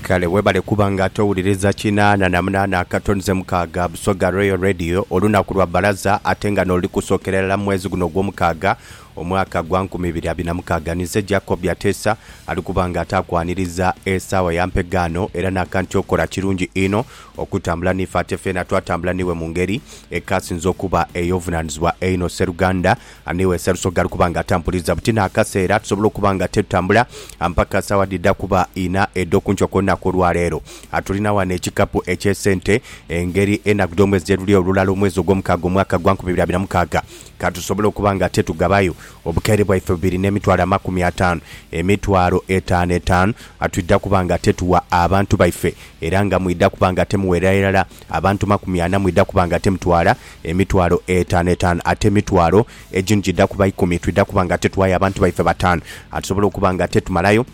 Kale webale kuba nga ate owuliriza kinaana na munaana akatonze mukaaga Busoga Royal Radio olunaku lwa balaza ate nga noluli kusookera irala mu mwezi guno ogwomukaaga omwaka gwa nkumi ibiri abiri na mukaaga ninze Jacob Byateesa ali kuba nga ate akwaniriza esaawa ya mpegaano era naka nti okola kirungi inho okutambula niife ate feena twatambula niiwe mu ngeri ekasinze okuba eyovunanizibwa einho Sseruganda Ani we Sarusogi ali kuba nga atampuliza buti n'akaseera tusobole okuba nga titutambula mpaka saawa dhidha kuba inha edh'oku nkyo ku lunaku olwa leero? Tulina ghano ekikapu eky'esente, engeri enaku dh'omwezi gye luli olulala omwezi ogw'omukaaga omwaka gwa nkumi ibiri abiri na mukaaga. Ka tusobole okuba nga titugabayo obukaire bwaife bubiri n'emitwalo amakumi ataanu, emitwalo etaanu etaanu, twidha kuba nga tituwa abantu baife era nga mwidha kuba nga timuwerera irala Abantu makumi ana mwidha kuba nga temutwala, emitwalo etaanu etaanu ate emitwalo egimu gidha kuba ikumi. Twidha kuba nga tetughayo abantu baife bataanu. A Tusobola okuba nga tetumalayo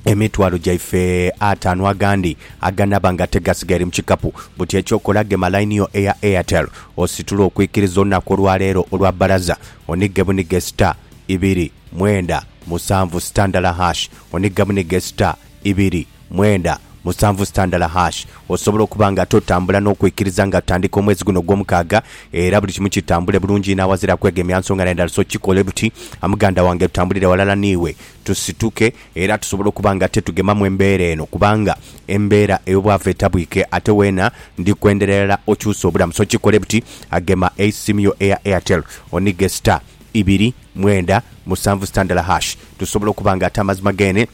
emitwalo gyaife ataanu agandi aganaaba nga tegasigaire mu kikapu. Buti eky'okola, gema line yo eya Airtel ositule okwikiriza olunaku olwa leero olwa bbalaza, onige bunige star, ibiri, mwenda, musanvu, star ndala hash, onige bunige star, ibiri, Mwenda, musanvu sitandala hash. Osobola okuba nga ate otambula n'okwikiriza nga tutandika omwezi guno ogw'omukaaga era buli kimu kitambule bulungi inho aghazira kwegemya nsonga na ndala so kikole buti muganda wange tutambulire ghalala n'iwe tusituke era tusobole okuba nga tetugemamu embeera eno kubanga embeera ey'obwavu etabwike ate weena ndi kwendera irala okyuse obulamu so kikole buti gema eisimu yo eya Airtel onige star ibiri, mwenda, musanvu sitandala hash tusobole okuba nga ate amazima gene.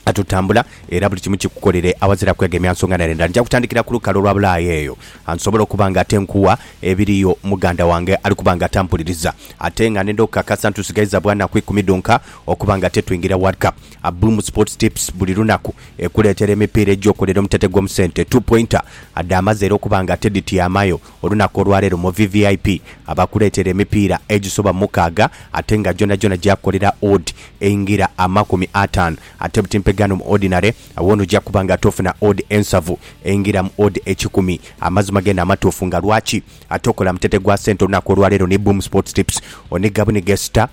Kati otambula era buli kimu kikukolere awazira kwegemya nsonga na ndha. Nja kutandikira ku lukalu olwa Bulaaya eyo nsobole okuba nga ate nkuwa ebiriyo. Muganda wange ali kuba nga atampuliriza ate nga nenda okukakasa nti tusigaiza bwa naku ikumi dhonka okuba nga ate twingira World Cup. A Bloom Sports Tips buli lunaku ekuleetera emipiira egy'okolera omutete gw'omu sente, two pointer, adhaamaze era okuba nga ate dhityamayo Olunaku olwaleero mu VVIP abakuleetera emipiira egisoba mukaaga ate nga gyonagyona gyakolera odd eingira amakumi ataanu ate buti mpegaano mu Ordinary awo noja kuba nga ate ofuna odd ensavu eingira mu odd ekikumi amazima geena amatuufu nga lwaki ate okola mutete gwa sente olunaku olwaleero ni Boom Sports Tips oniga buniga star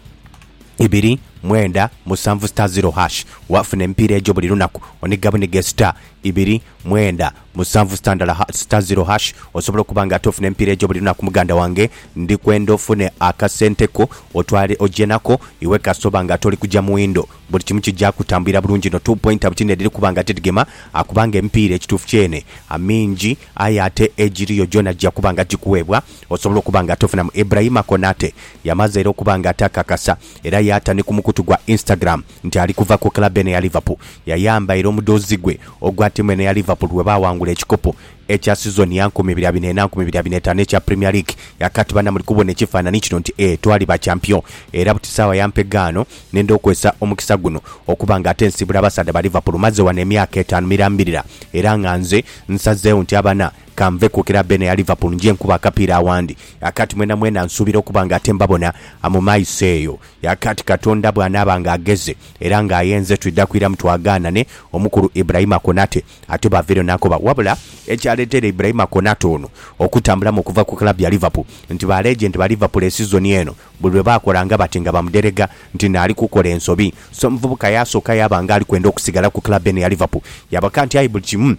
ibiri mwenda musanvu star zero hash wafuna emipiira egyo buli lunaku oniga buniga star ibiri mwenda Musanvu sitandala ha sita ziro hash osobola okuba nga ate ofuna emipiira egyo buli lunaku muganda wange ndi kwenda ofune akasente ko otwale oje nako iwe kasita oba nga toli kuja muwindo buli kimu kija kutambulira bulungi no two pointer bukyi nediri kuba nga tidgema akubanga emipiira ekituufu kyene mingi aye ate egiriyo gyona gija kuba nga gikuwebwa osobola okuba nga ate ofunamu Ibrahima Konate yamaze era okuba nga ate akakasa era yata ni kumukutu gwa Instagram nti ali kuva ku club eno eya Liverpool yayambaire omudhoozi gwe ogwa tiimu eno eya Liverpool bwebaawangula ekikopo ekya sizoni ya nkumi ibiri abiri naina nkumi ibiri abiri naitaanu ekya Premier League yakati bana muli kubona ekifanhanhi kino nti eeh twali ba champion era buti saawa ya mpegaano nenda okwesa omukisa guno okuba nga ate nsiibula abasaadha ba Liverpool maze wano emyaka etaanu mirambirira era nga nze nsazeewo nti abana kanve ku club eno eya Liverpool nje nkube akapiira awandi yakati mwenamwena nsuubira okuba nga ate mbabona mu maiso eyo. Yaka ati, Katonda bw'anaaba ng'agheze era ng'ayenze twidha kwiramu twagaanane. Omukulu Iburaima Konate ate bw'avaireyo n'akoba wabula ekyaleeteire Iburaima Konate ono okutambulamu okuva ku club ya Liverpool nti ba legend ba Liverpool e sizoni eno buli lwe baakolanga bati nga bamuderega nti naali kukola ensobi so omuvubuka yaasooka yaaba ng'ali kwenda okusigala ku club eno eya Liverpool yaabaka nti aye buli kimu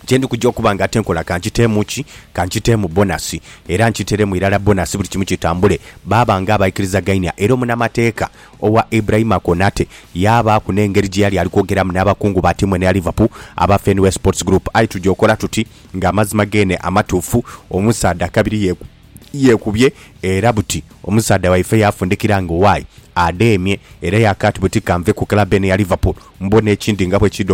kye ndi kuja okuba nga tinkola ka nkiteemu ki, ka nkiteemu bonasi, era nkiteeremu irala bonasi buli kimu kitambule. Baaba ng'abaikirizagainia, era omunamateeka owa Ibrahima Konate yaabaaku n'engeri gye yali ali kwogeramu n'abakungu ba tiimu eno eya Liverpool aba Fenway Sports Group. Aye tuja okola tuti nga amazima geene amatuufu, omusaadha kabiri yeekubye era buti omusaadha waife yaafundikira nga owaaye adheemye era yaakaati buti ka nve ku club eno eya Liverpool mbone ekindi nga bwe kiidha